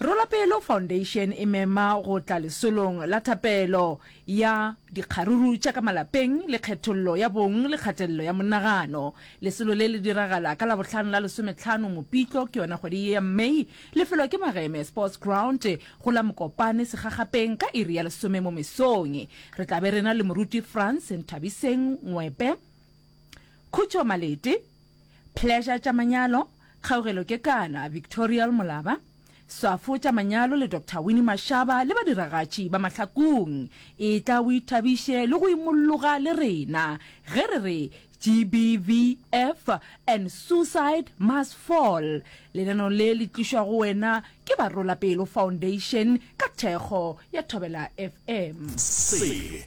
Rolapelo Foundation e mema go tla lesolong la thapelo ya dikgaruru tša ka malapeng le kgethollo ya bong le kgatelelo ya monagano. Lesolo le le diragala ka Labohlano la lesometlhano Mopitlo, ke yona kgwedi ye ya May. Lefelo ke Mageme Sports Ground go la Mokopane Segagapeng ka iri ya lesome mo mesong. Re tla be re na le moruti Franz Nthabiseng Ngwepe. Khutšo Malete, Pleasure tša manyalo, Kgaugelo Kekana, Victorial Molaba, Swafo tša manyalo le Doctor Winnie Mashaba le badiragatši ba Mahlakong. Etla o ithabiše le go imolloga le rena ge re re GBVF and Suicide Must Fall. Lenaneo le le tlišwa go wena ke Barolapelo Foundation ka thekgo ya Thobela FM. Se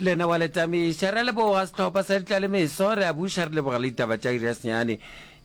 Lena wa le tamiša. Re a leboga sehlopha sa ditlalemeso. Re a buša re leboga le ditaba tša iri ya senyane.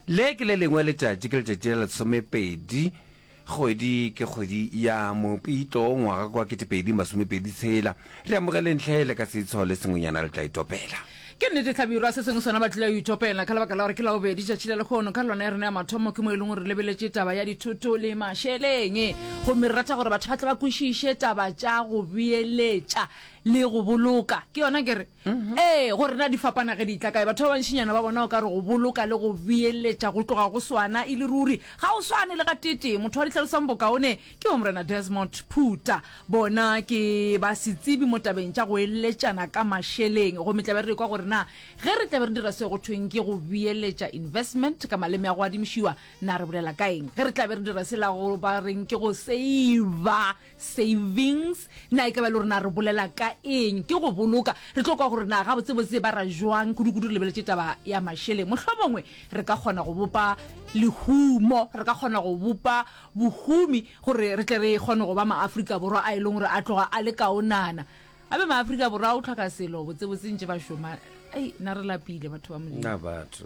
Le ke le lengwe letšatši, ke letšatši la lesomepedi, kgwedi ke kgwedi ya Mopitlo, ngwaga kwa ketepedi masomepedi tshela. Re amogeleng hle le ka setsho le sengwenyana re tla itopela. Ke nnete hlabirwa, se sengwe sona ba tlile go itopela, ka lebaka la gore ke labobedi tšatši la lekgono. Ka lona ya rena ya mathomo ke mo e leng gore re lebeletše taba ya dithoto le mašeleng. Gomme re rata gore batho ba tle ba kwešiše taba tša go beeletša. le go boloka ke yona ke re mhm. ee gore na di fapana ge di tla kae batho ba bantšinyana ba bona o ka re go boloka le go beeletša go tloga go swana e le ruri ga o swane le ga tete motho wa ditlhalosang bokaone ke wa morena desmond phuta bona ke ba setsibi mo tabeng tša go eletšana ka mašeleng go metlabe re kwa gore na ge re tlabe re dira se go thweng ke go beeletša investment ka maleme ya go adimišiwa na re bolela ka eng ge re tlabe re dira se la go ba reng ke go seiva Savings, na e ka ba le gore na re bolela ka eng ke go boloka? Re tlo kwa gore na gabotsebotse ba ra jwang kudu-kudu re lebeletše taba ya mašeleng. Mohlomongwe re ka kgona go bopa lehumo, re ka kgona go bopa bohumi gore re tle re kgone go ba maAfrika Borwa a e leng gore a tloga a le kaonana. Gape maAfrika Borwa o tlhoka selo botsebotse ntše ba šoma. Ai, na re lapile batho ba Modimo. Na batho.